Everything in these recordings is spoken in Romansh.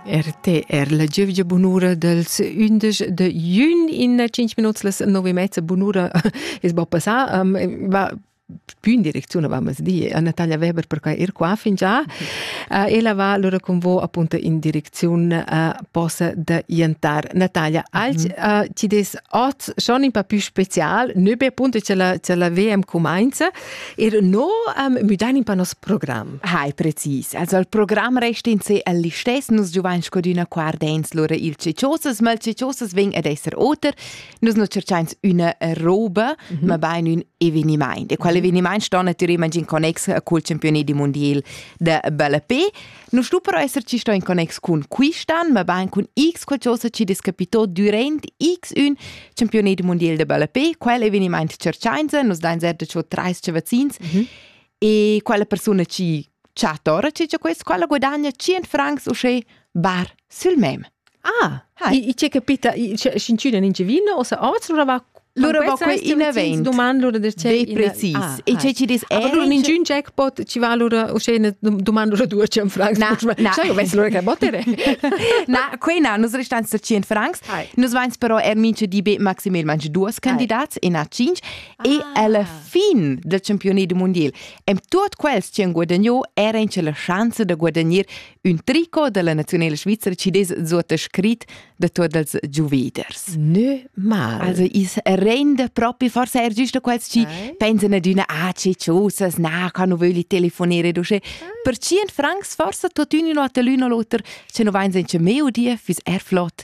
RTR, la giuvgia bunura dels undisch de jun in cinc minuts las nove e mezza bunura es bo passà um, va più in direzione vamos di a Natalia Weber perché ir qua fin già uh, e la va allora con voi appunto in direzione uh, possa de iantar Natalia als uh, ci des oz schon in pa più special ne be appunto ce la ce la VM comenza Er no um, müdain in pa nos program. Hai, precis. Also il program resta in sé el listes, nus giuvain scodüna qua ardens lura il ceciosas, ma il ceciosas ven ad esser oter. Nus nu cerchains üna roba, mm -hmm. ma bain ün evenimaint. E qual mhm. evenimaint sta natüralment in connex col campioni di mondial de ballapé. Non sto però esser ci sto in connex cun quistan, ma bain cun X qualcosa ci discapitò durant X1 Championat mondial de balapé, quel eveniment Cerciainza, nos dain zerda ciò trais cavazzins, mm -hmm. e quella persona ci chatora ci c'è questo, quella guadagna 100 francs o sche bar sul mem. Ah, Hi. I, c'è capita, scincina in vino o sa oz lura va Lura va quei in event. Doman lura der c'è. Be precis. Ah, e c'è ci dis eh. Aber lura in giun jackpot ci va lura uscena doman lura due cent francs. Na, sai ves lura che botere. Na, quei na, nus restan sta cent francs. Nus vains però er mince di be maximal manche duas candidats e na cinc e alla fin del campione du mondial. Em tuot quels ci han guadagno era in la chance de guadagnare Ün tricot della nazionela svizra ci des sottascrit da tuot els giuveders. Nö mal. Also is rende propi forse er giusto quels ci pensano ad una ACCUSas, na, ca nu vögli telefonere duce. Per cient francs forse tutt'un un hotel l'un o l'oter, ce nu vain sen che meudie, fis er flott,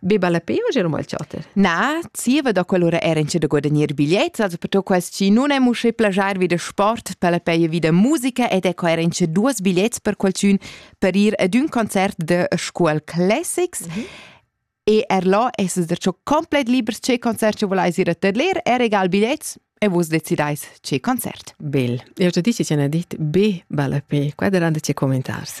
Beba la pe o gelo mal chatter? Na, zieva da quell'ura era in da guadagnir bigliets, also per quels chi nun emu usché plagiar vi da sport per la peia vi da musica ed ecco era in duos bigliets per qualchün per ir ad ün concert da Scuol Classics. Mm -hmm. E er là es es der cho komplett libers che concert che volais ir a tedler, er egal bigliets, e vus decidais che concert. Bel. Io te dici ci hanno detto, be, bella pe, qua daranno ci commentars.